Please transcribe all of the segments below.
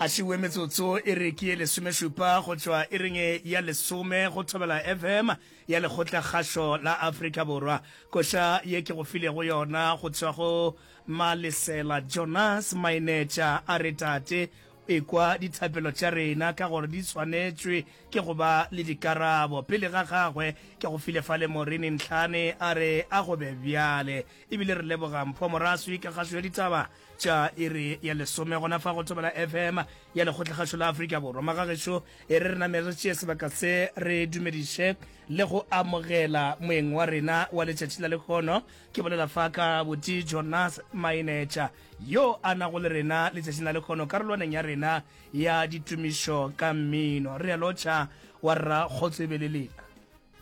a šiwe metsotso e re ke lesomešupa go tšwa e reng ya lesome go thobela fm ya lekgotla kgašo la afrika borwa koša ye ke go filego yona go tšwa go malesela jonas mainetša a re tate ekwa dithapelo tša rena ka gore di tshwanetšwe ke go ba le dikarabo pele ga gagwe ke go file fa le morini ntlhane a re a go be bjale ebile re leboga mpho moraswi ka kgašo ya ditaba tša iri ya lesome gona fa go thobela fm ya lekgotlagašo la afrika borwa magagešo e re re name re tšee sebaka se re dumediše le go amogela moeng wa rena wa letšatši la lekgono ke bolela fa ka boti jonas mainetša yo a nago le rena letšatšing la lekgono karolwaneng ya rena ya ditumišo ka mmino re a lotšha wa rra kgotsebeleleng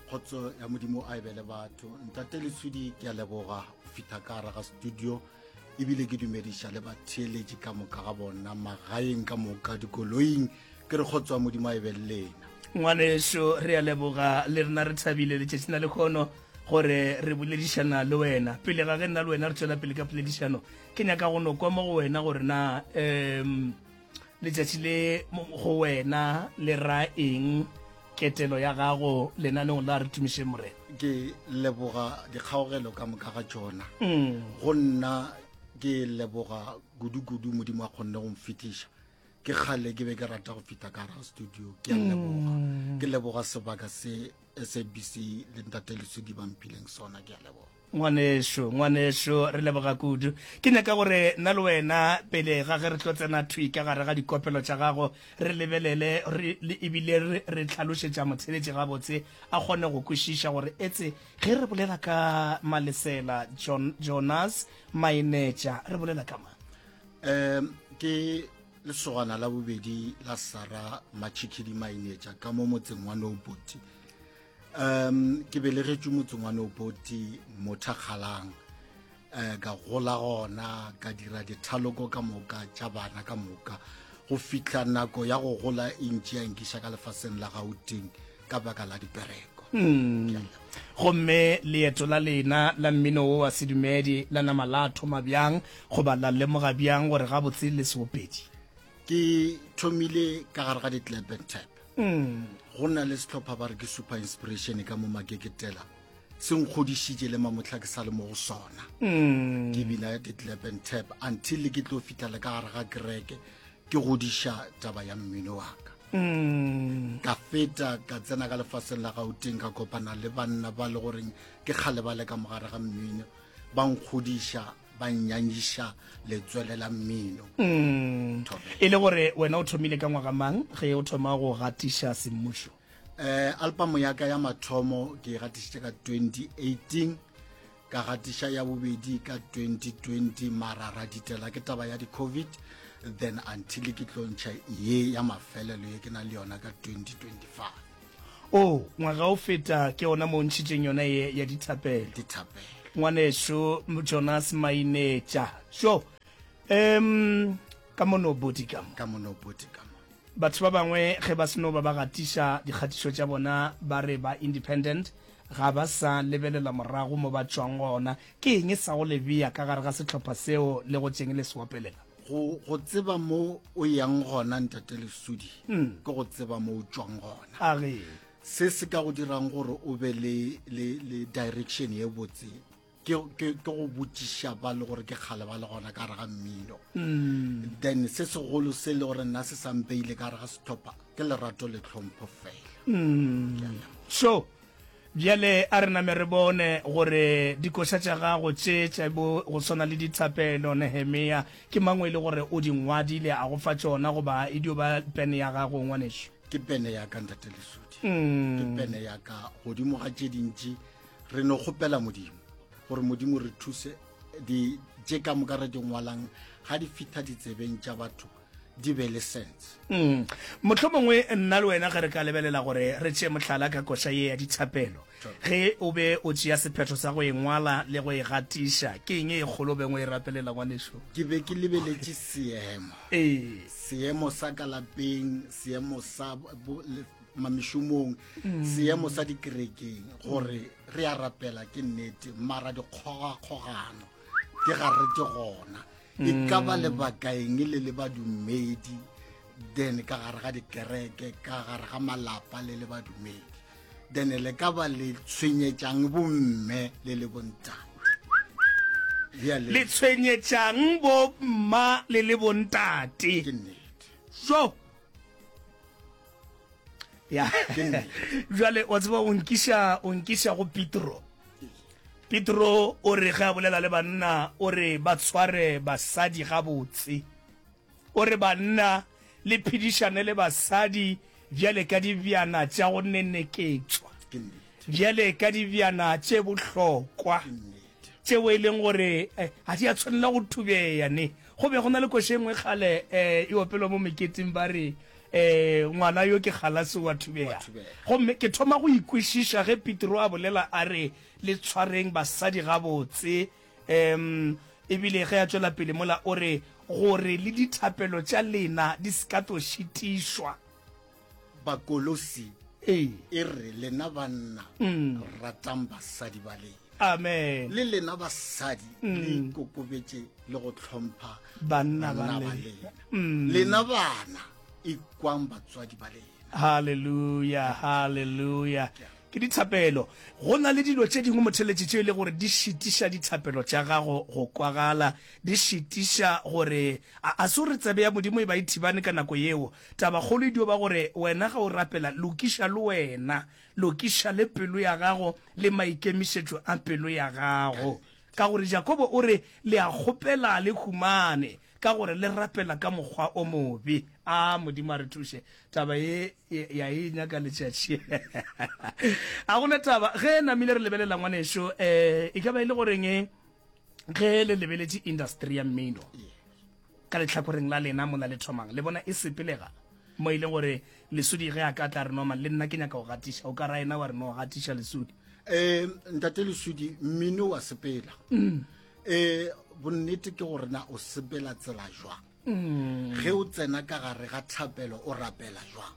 kgotso ya modimo a ebe le batho ntate leswidi ke a leboga go fitlha ka raga studio ebile ke dumediša le batheeletši ka moka ga bona magaeng ka moka dikoloing ke re kgotso ya modimo a ebe le lena ngwaneso re a leboga le rena re thabile letšatši na le kgono gore re boledišana le wena pele ga ge nna le wena re tswela pele ka poledišano ke nyaka go no kwa mo go wena gore na um letšatši le go wena le ra eng ketelo ya gago lenaneng la re tumišeng morena ke leboga dikgaogelo ka moka ga tšona mm. go nna ke leboga kudu-kudu modimo a kgonne go mfitiša ke kgale ke be ke rata go fita ka gara studio ke a leboga mm. ke leboga sebaka se sabc le ntate lesodi ba mpileng sona ke a leboga ngwaneso ngwaneso re leboga kudu ke nyaka gore nna le wena pele ga ge re tlo tsena thwi ka gare ga dikopelo tša gago re lebelele ebile re tlhalošetša motshebetši gabotse a kgone go kwešiša gore etse ge re bolela ka malesela jonas mainetša re bolela ka mang um ke Lesogana la bobedi la Sara Matšhikhidi Mainetša ka mo motseng wa Noboti. Um, ke belegetšwe motseng wa Noboti Mothakgalang. Eh, ka gola gona ka dira dithaloko ka moka tša bana ka moka go fihla nako ya go gola e ntši ya nkiša ka lefaseng la gauteng ka baka la dipereko mm. gomme leeto la lena la mmino wo wa sedumedi la nama la thoma bjang goba la lemoga bjang gore gabotse le seopedi ke thomile ka gare ga di-clap and tap mm. go na le setlhopha ba re ke super inspiration ka mo makeketela se nkgodišitše le mamotlha ke sa le mo go sona mm. ke bina ya detlap and tap until le ke tlo fitlhela ka gare ga kereke ke godiša taba ya mmino wa ka mm. ka feta ka tsena ka lefaseng la gauteng ka kopana le banna ba le goreng ke kgale ba le ka mogare ga mmino ba nkgodiša ba nyanyiša letswele la mmino mm. e le gore wena o thomile ka ngwaga mang ge o thoma go gatiša semmušo Eh, album ya ka ya mathomo ke e gatišitše ka 2018 ka gatiša ya bobedi ka 2020 mara ra ditela ke taba ya di-covid then until ke tlontšha ye ya mafelelo ye ke na le yona ka 2025 o oh, ngwaga o feta ke ona mo ntšhitšeng yona ye ya dithapelo dithapelo ngwaneso jonas mainetša so um ka mono bodikamo ka mono bodikamo Batho ba bangwe ge ba seno ba ba gatiša dikgatišo tša bona ba re ba independent, ga ba sa lebelela morago mo ba tšwang gona. Ke eng sa go le bea ka gare ga sehlopha seo le go tšeng le se opelela? Go, go tseba mo o yang gona, Ntate Lesudi, ke go tseba mo o tšwang gona. A re. Se se ka go dirang gore o be le, le, le direction e botse. ke ke ke go botšiša ba le gore ke kgale ba le gona ka gare ga mmino mm. then se segolo se le gore nna se sampeile ka gare ga setlhopha ke lerato le tlhompho fela mm. so bjale a re name re bone gore dikoša tša gago tše tša bo go tshwana le dithapelo nehemea ke mangwe e le gore o di ngwadile a go fa tšona goba e dio ba pene ya gago ngwaneso ke pene ya ka ntate lesodi mm. ke pene ya ka godimo ga tše dintši re no kgopela modimo gore modimo re thuse di je ka moka re di ngwalang ga di fitha ditsebeng tša batho di be le sense mm. motlho mongwe nna le wena ge re ka lebelela gore re tšee mohlala ka koša ye ya dithapelo ge o be o tšea sephetho sa go e ngwala le go e gatiša ke eng e kgolo bengwe e rapelela ngwaneso ke be ke lebeletše seemo ee. seemo sa ka lapeng seemo sa mamišomong mm. seemo sa dikerekeng gore re a rapela ke nnete mara dikgogakgogano ke ga re ke gona e mm. ka ba lebakaeng le le badumedi then ka gare ga dikereke ka gare ga malapa le le badumedi then le ka ba le tshwenyetsang bomme le le bontang le tshwenyetsang bomma le le bontate jo ya jale wa tseba o nkisa o nkisa go petro petro o re ge a bolela le banna o re ba tshware basadi gabotse o re banna le phedišane le basadi bjale ka dibjana tša go neneketswa bjale ka dibjana tše bohlokwa tšeo e leng gore ga di a tshwanela go thubeya ne go be go na le koše nngwe kgale um e opelwa mo meketeng ba re um ngwana yo ke galase wa thubeya gomme ke thoma go ikwešiša ge petro a bolela a re le tshwareng basadi gabotse um ebile ge a tšwela pele mola o re gore le dithapelo tša lena di se ka tlo šitišwa bakolosi Ee. e re lena banna ratang basadi ba lena amen le lena basadi le ikokobetše le go hlompha Banna ba lena. lena lena bana ikwang batswadi ba lena haleluya haleluya ke dithapelo go na le dilo tše dingwe motheletši tše e le gore di šitiša dithapelo tša gago go kwagala di šitiša gore a a se o re tsebe ya modimo e ba e thibane ka nako yeo Tabakgolo e dio ba gore wena ge o rapela, lokiša le wena, lokiša le pelo ya gago le maikemišetšo a pelo ya gago. Ka gore Jakobo o re, Le a kgopela, le humane, ka gore le rapela ka mokgwa o mobe. A Modimo a re thuše. Taba ye ya e nyaka letšatši. Ga go na taba ge namile re lebelela ngwaneso, um e ka ba e le goreng ge le lebeletše industry ya mmino, Ka lehlakoreng la lena, mola le thomang, le bona e sepelega, mo e leng gore Lesudi ge a ka tla re, Norman, le nna ke nyaka go gatiša. O ka ra ena wa re, No, gatiša, Lesudi. Ee, Ntate Lesudi, mmino wa sepela. Mm. Ee, bonnete ke gore na o sepela tsela jwang? Mm. Ge o tsena ka gare ga thapelo, o rapela jwang?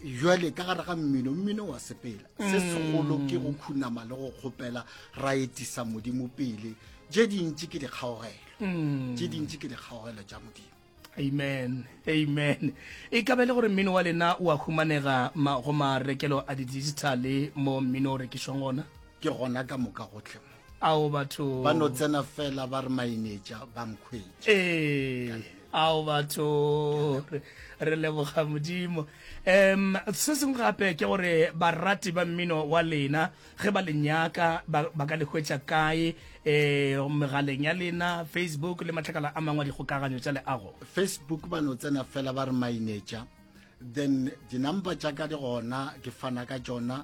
jale ka gare ga mmino mmino wa sepela mm. se segolo ke go khunama le go kgopela ra etisa modimo pele je dintši ke dikgaogelo je mm. dintši ke dikgaogelo ja modimo amen amen e ka be le gore mmino wa lena o a humanega go marekelo a di-digitale mo mmino o rekišwang gona ke gona ka moka gotlhe ao batho ba no tsena fela ba re mainetša ba nkhwetše ee ao batho re leboga modimo um se sengwe gape ke gore barati ba mmino wa lena ge ba lenyaka ba ka le hwetša kae um megaleng ya lena facebook le matlakala a mangwe a dikgokaganyo tša leago facebook ba no tsena fela ba re mainetša then dinumber tša ka di gona ke fana ka tšona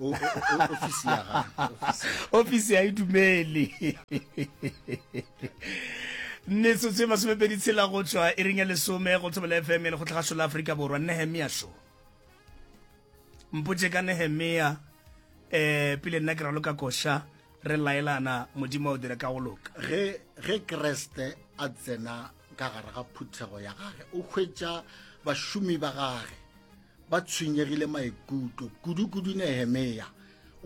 ofisi ya ga ofisi ya idumeli metsotso e masomepedi tshela go tšwa e reng ya lesome go thobela fm le go tlhagašo la aforika borwa nehemia sho mpotse ka nehemia um pele nna ke ralo ka koša re laelana modimo o dire ka go loka ge ge kreste a tsena ka gare ga phuthego ya gage o hwetša bašomi ba gage ba tshwenyegile maikutlo kudu-kudu nehemea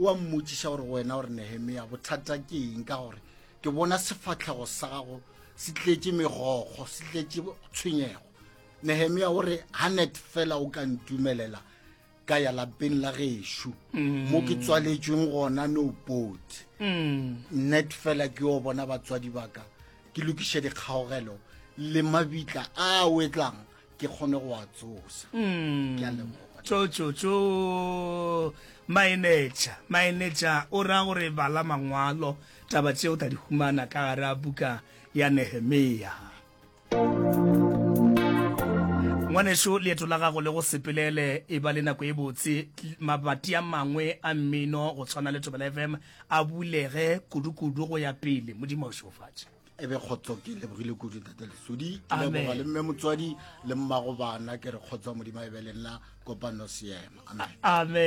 o a mmotšiša gore wena gore nehemea bothata ke eng ka gore ke bona sefatlhego sa gago se tletše megokgo se tletše tshwenyego nehemia o re hanet fela o ka ntumelela ka ya lapeng la gešo mm. mo ke tswaletšweng gona no pot mm. net fela ke yo bona batswadi baka ke lokiše dikgaogelo le mabitla a wetlang ke kgone go a tsosa mm. ke a lemoga tšotšotšo maenetša maenetša o ra gore bala mangwalo taba tšeo ta di humana ka gare a buka ya nehemea ngwaneso leeto la gago le go sepelele e ba le nako e botse mabati a mangwe a mmino go tshwana le tobela fm a bulege kudu-kudu go ya pele modimo o šofatše e be kgotso ke lebogile kudu tate lesodi ke leboga le mme motswadi le mmago bana ke re kgotso modimo e be le nna kopano seema amen